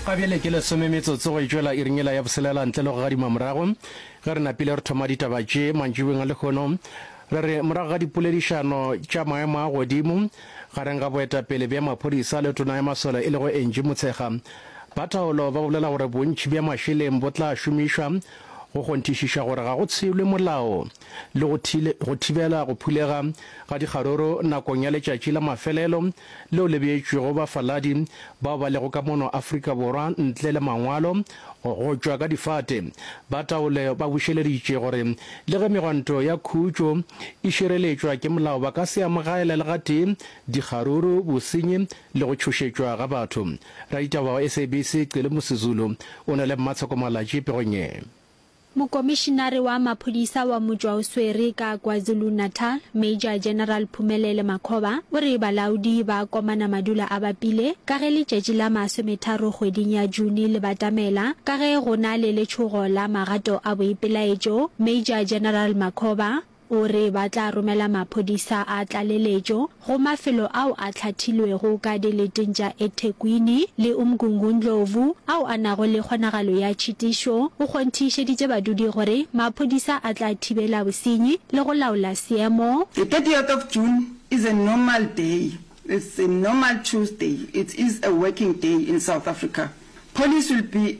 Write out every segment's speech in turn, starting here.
ga bjale ke lesome metsotso go etšwela iringela ya boselela ntle le go gadima morago ge re napile re thoma ditaba tše mantšibeng a lekgono re re morago ga dipoledišano tša maemo a godimo gareng ga boetapele bja maphodisa le tona ya masole e lego engi motshega ba thaolo ba bolela gore bontšhi bja mašeleng bo tla šomišwa go kgonthišiša gore ga go tshelwe molao le go go thibela go phulega ga dikgaruru nakong ya letšatši la mafelelo leo le beetšwego bafaladi bao ba lego ka mono Afrika Borwa ntle le mangwalo go tšwa ka difate. Ba taolo ba bušeleditše gore le ge megwanto ya khutšo e šireletšwa ke molao ba ka se amogaele le gatee dikgaruru, bosenyi le go tšhošetšwa ga batho. Raditaba wa SABC Cele Musizulu o na le mmatshoko-malatši pegong ye. Mokomišinare wa maphodisa wa motšwa o swere ka KwaZulu-Natal, Major General Phumelele Makhoba, o re balaodi ba komana madula a bapile ka ge letšatši la masometharo kgweding ya June le batamela ka ge go na le letšhogo la magato a boipelaetšo. Major General Makhoba, O re ba tla romela maphodisa a tlaleletšo go mafelo ao a hlathilwego ka dileteng tša eThekwini le Umgungundlovu ao a nago le kgonagalo ya tšhitišo. O kgonthišeditše badudi gore maphodisa a tla thibela bosenyi le go laola seemo. The thirtieth of June is a normal day, it's a normal Tuesday, it is a working day in South Africa, police will be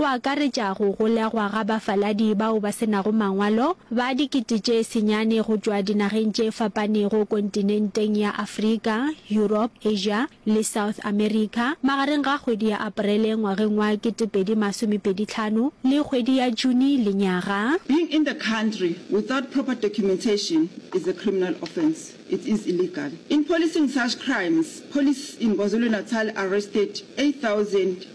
go akaretša go golegwa ga bafaladi bao ba se nago mangwalo ba dikete tše senyane go tšwa dinageng tše fapanego kontinenteng ya Afrika, Europe, Asia le South America magareng ga kgwedi ya Aparele ngwageng wa kete pedi masome pedi tlhano le kgwedi ya June lenyaga. Being in the country without proper documentation is a criminal offence, it is illegal. In policing such crimes, police in KwaZulu-Natal arrested eight thousand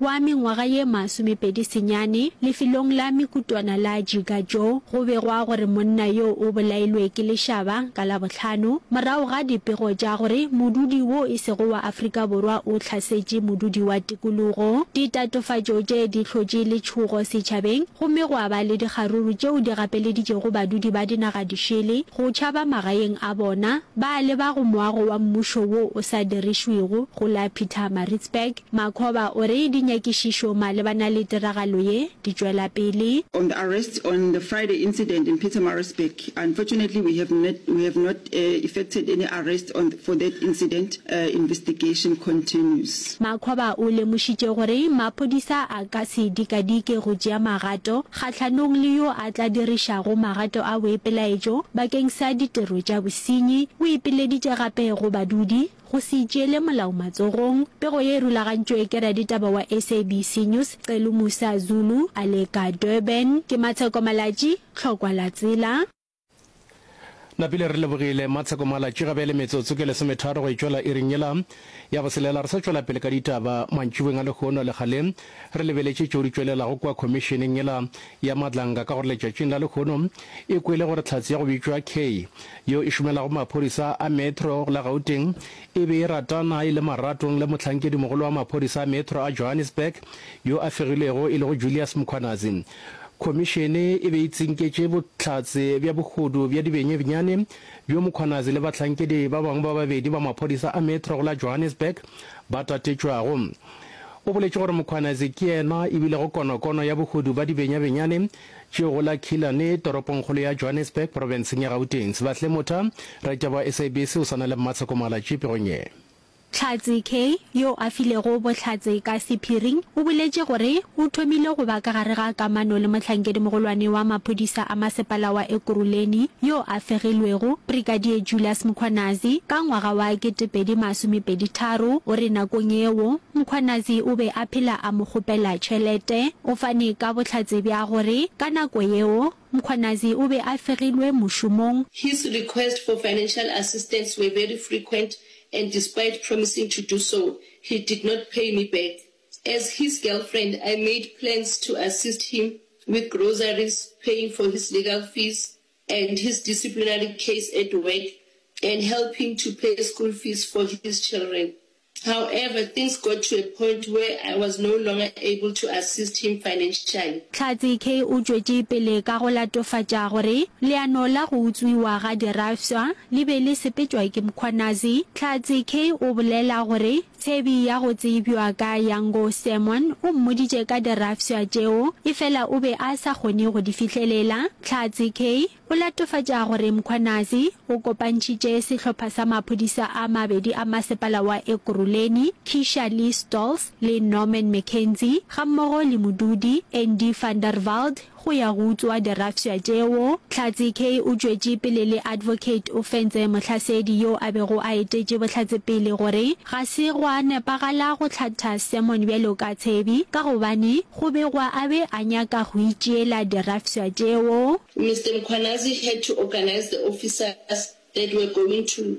Wa mengwaga ye masomepedi senyane, lefelong la Mikutwana la Jigajo, go begwa gore monna yo o bolailwe ke lešaba ka Labohlano morago ga dipego tša gore modudi wo e sego wa Afrika Borwa o hlasetše modudi wa tikologo. Ditatofatšo tše di hlotše letšhogo setšhabeng gomme gwa ba le dikgaruru tšeo di gapeleditšego badudi ba dinaga dišele go tšhaba magaeng a bona ba leba go moago wa mmušo wo o sa dirišwego go la Pietermaritzburg. Makhoba o re dinyakišišo malebana le tiragalo ye di tšwela pele. On the arrest on the Friday incident in Pietermaritzburg, unfortunately we have not we have not effected any arrest on for that incident, investigation continues. Makhoba o lemošitše gore maphodisa a ka se dikadike go tšea magato kgahlanong le yo a tla dirišago magato a boipelaetšo bakeng sa ditiro tša bosenyi. O ipileditše gape go badudi Go se itšeele molao matsogong, pego ye e rulagantšwe ke raditaba wa SABC News Celu Musa Zulu a le ka Durban. Ke Matsheko Malatji, Tlhokwa la Tsela. Napile re lebogile Matsheko Malatji. Ga bjale metsotso ke lesometharo go e tšwela iring yela ya boselela. Re sa tšwela pele ka ditaba, mantšiboweng a lehono a legale, Re lebeletše tšeo di tšwelelago kua khomišeneng yela ya Madlanga ka gore letšatšing la lehono e kwele gore Tlhatsi ya go bitšwa Kay, yo e šomelago maphodisa a Metro la Gauteng, e be e ratana e le maratong le mohlankedi-mogolo wa maphodisa a Metro a Johannesburg yo a fegilwego e lego Julius Mkhwanazi. Khomišene e be e tsinketše bohlatse bja bohodu bja dibenyenyane bjo Mkhwanazi le bahlankedi ba bangwe ba babedi ba maphodisa a Metro la Johannesburg ba tatetšwago. O boletše gore Mkhwanazi ke yena e bilego konokono ya bohodu ba dibenyabenyane tšeo go la Killarney, toropongkgolo ya Johannesburg, porofenseng ya Gauteng. Sebahle Motha, raditaba wa SABC o swana le Mmatsheko Mohalatšie pegong ye. Tlhatse Kay, yo a filego bohlatse ka sephiring, o boletše gore o thomile go ba ka gare ga kamano le mohlankedi-mogolwane wa maphodisa a masepala wa Ekurhuleni yo a fegilwego, Brigadier Julius Mkhwanazi, ka ngwaga wa 2000. Lesomepedi tharo, o re nakong yeo Mkhwanazi o be a phela a mo kgopela tšhelete. O fane ka bohlatse bja gore ka nako yeo Mkhwanazi o be a fegilwe mošomong. His request for financial assistance were very frequent and despite promising to do so, he did not pay me back. As his girlfriend, I made plans to assist him with groceries, paying for his legal fees, and his disciplinary case at work and helping to pay school fees for his children. However, things got to a point where I was no longer able to assist him financially. Tlhatse Kay o tšwetše pele ka go latofatša gore leano la go utswiwa ga dirafswa le be le sepetšwa ke Mkhwanazi. Tlhatse Kay o bolela gore Tshebi ya go tsebjwa ka Yango Sermon o mmoditše ka dirafswa tšeo efela o be a sa kgone go di fihlelela. Tlhatse Kay o latofatša gore Mkhwanazi o kopantšhitše sehlopha sa maphodisa a mabedi a masepala wa Ekurhuleni, Keisha Lee Stolz le Norman McKenzie, gammogo le modudi, Andy van der Walt. Go ya go utswa dirafsha tšeo, Tlhatse Kay o tšwetše pele le Advocate o fentse Mohlasedi yo a bego a etetše Bohlatse pele gore ga se gwa nepagala go hlatha Sermon bjalo ka Tshebi ka gobane go begwa a be a nyaka go itšeela dirafsha tšeo. Mister Mkhwanazi had to organise the officers that were going to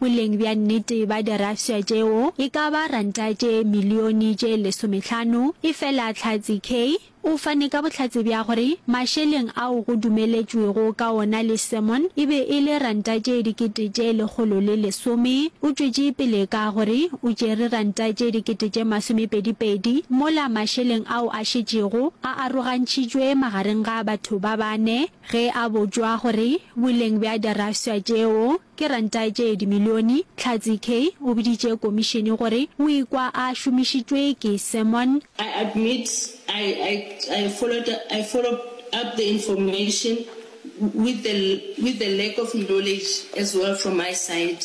Boleng bja nnete bja dirafša tšeo e ka ba ranta tše milione tše lesomehlano. Efela Tlhatse Kay o fane ka bohlatse bja gore mašeleng ao go dumeletšwego ka ona le sermon e be e le ranta tše dikete tše lekgolo le lesome. O tšwetše pele ka gore o tšere ranta tše dikete tše masomepedipedi mola mašeleng ao a šetšego a arogantšhitšwe magareng ga batho ba bane. Ge a botšwa gore boleng bja diraswa tšeo ke ranta tše dimilione, Tlhatsi Kay o boditše komišene gore o ikwa a šomišitšwe ke Sermon, I admit I I I followed I followed up the information with the with the lack of knowledge as well from my side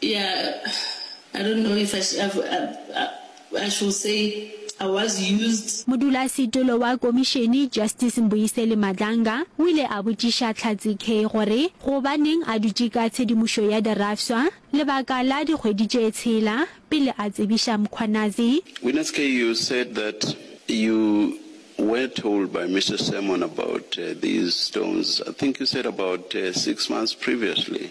Yeah, I don't know if I should, I should say I was used. Modulasetilo wa komišene, Justice Mbuyiseli Madlanga, o ile a botšiša Tlhatse Kay gore gobaneng a dutše ka tshedimošo ya dirafswa lebaka la dikgwedi tše tshela pele a tsebiša Mkhwanazi. Witness Kay, you said that you were told by Mister Sermon about these stones, I think you said about six months previously,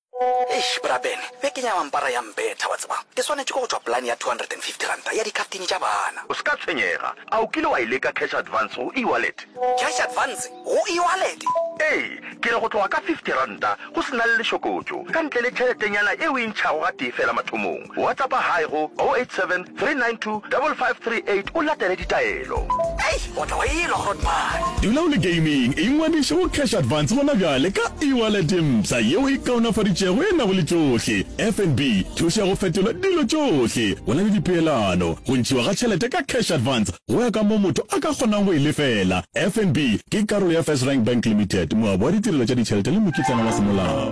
Eish, Bra Ben, be ke nyama mpara ya mbetha, wa tseba. Ke swanetše ke go tšwa polane ya two hundred and fifty ranta ya dikhaftini tša bana. O se ka tshwenyega. A o kile wa e leka cash advance go e-wallet? Cash advance go e-wallet? Ee, ke re go tloga ka fifty ranta go se na le lešokotšo, ka ntle le tšheletenyana e o e ntšhago gatee feela mathomong. Whatsappa hi go 087 392 5538 o latele ditaelo. Eish o tla o elwa Grootman. Dula o le gaming, ingwadiše go Cash Advance gona bjale ka e-wallet ye mpsha yeo e kaonafaditšego e nago le tšohle, FNB, thušo ya go fetola dilo tšohle, go na le dipeelano, go ntšhiwa ga tšhelete ka Cash Advance go ya ka moo motho a ka kgonago go e lefela. FNB ke karolo ya FirstRand Bank Limited, moabi wa ditirelo tša ditšhelete le mokitlana wa semolao.